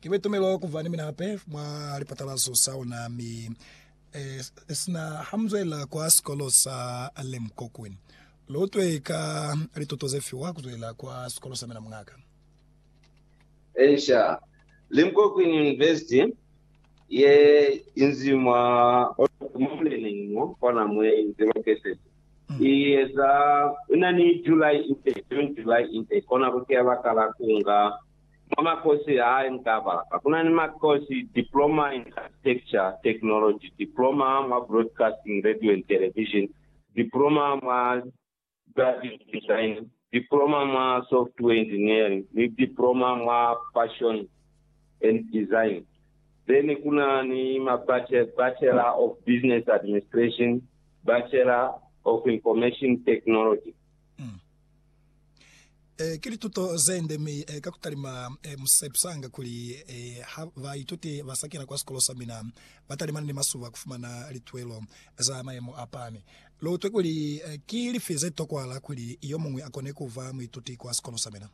Ki be tumelo kuva ni mina hape mwa lipatalazo sa ona, mi esina ha mu zwelela kwa sikolo sa Limkokwin. Lu utwe ka lituto ze fiwa ku zwelela kwa sikolo sa mina, muñaka? Encia, Limkokwin University ye inzi mwa Oregon, mwa muleneñi mo kona mwe inzi located. I eza na ni July ite, June, July ite, kona ku tea baka la ku nga mwa makosi ha i nga ba lapa. Ku na ni makosi, Diploma in Architecture Technology, Diploma mwa Broadcasting, Radio and Television, Diploma mwa Graphic Design, Diploma mwa Software Engineering ni Diploma mwa Fashion and Design. Then kuna ni ma Bachelor of Business Administration, Bachelor of Information Technology. Mm. E, ki lituto zende mi e, ka kutalima e, musepsanga kuli e, ha baituti ba sa kena kwa sikolo sa mina ba talimana ni masuba kufumana litwelo za mayemo a pami. Lutwe kuli, Ki lifi ze tokwahala kuli yo muñwi a kone ku ba muituti kwa sikolo sa mina?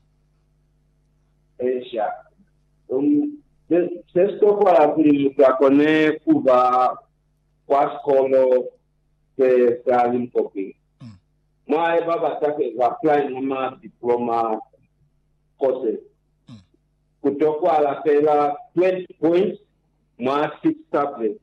Eezha. Um. Ze, ze si tokwahala kuli mutu a kone ku ba kwa sikolo se sa li mukopi. Mm. Mwa hae ba bata ku eza apply mwa ma diploma courses. Mm. Ku tokwahala feela 20 points mwa six subjects.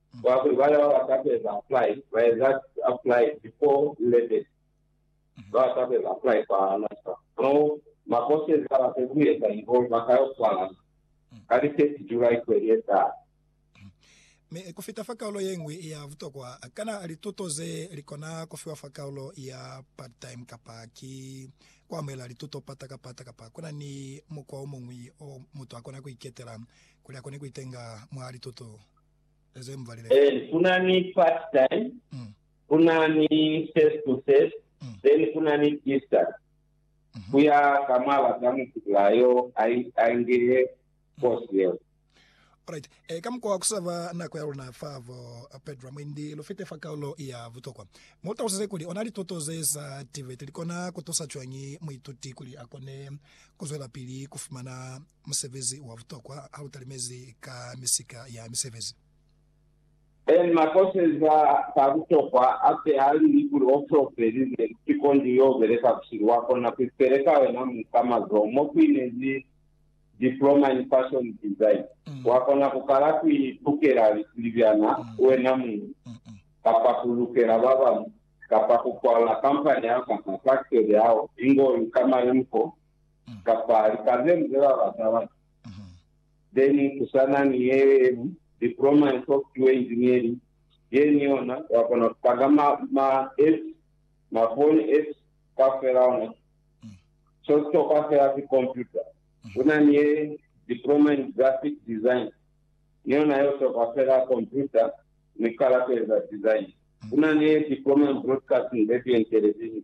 Kwa kuli bana ba ba sa kueza apply ba eza apply before 11, ba ba sa kueza apply kwa NASFAS mo ma courses a ba se ku eza involve ba ka yo swala ka li 30 July kweli ye taha. Mi ku fita fa kaulo ye ñwi ya butokwa, kana lituto ze li kona ku fiwa fa kaulo ya part-time kapa ki ku amuhela lituto pata ka pata? Kapa ku na ni mukwa o muñwi o mutu a kona ku iketela kuli a kone ku itenga mwa lituto? Then kuna ni part time, kuna ni first to first, then kuna ni distance. Kuya ka mwaaba za mutula yo a ingihe course yeo. Alright, e, ka mukwa wa kusava nako ya luna fa vo Pedro mwendi lu fite fa kaulo ya butokwa, mu talusize kuli ona lituto ze sa tiveti li kona ku tusa cwañi muituti kuli a kone ku zwelapili ku fumana musebezi wa butokwa ha lu talimezi ka misika ya misebezi. Emma koseza ka butokwa ape ha li li kuli o solofeli ze si kondi yo beleka busihu wa kona ku ipele ka wena mu ka mazoho mo ku inezi Diploma in Fashion Design. Wa kona ku kala ku i tukela lisibiana wena muñi, kapa ku lukela ba bañwi, kapa ku kwala kampani ya hao kapa faktori ya hao ingo lu ka malemuko kapa lipazelu ze ba bata batu. Then kusana ni ye yelu diploma in software engineering ye ni yona wa kona ku paka ma ma apps ma phone apps kaufela ona so sitokwa fela si computer. Una ni ye diploma in graphic design ni yona yo sitokwa fela computer ni kala ku eza design. Una ni ye diploma in broadcasting radio and television.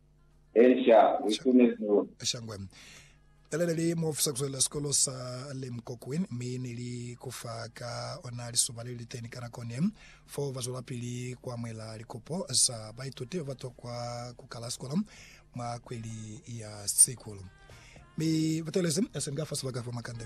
Esha, u itumezi luli. Esha ngwe. Ele ne li muofisa kuzuelela sikolo sa Lem Kokwin, mi ne li ku fa ka ona lisuba le li liteni ka nako ne fo ba zwelapili ku amuhela likopo za baituti ba ba tokwa ku kala sikolo mwa kweli ya Sikulu. Mi ba teelezi esinga fa sibaka fa makande.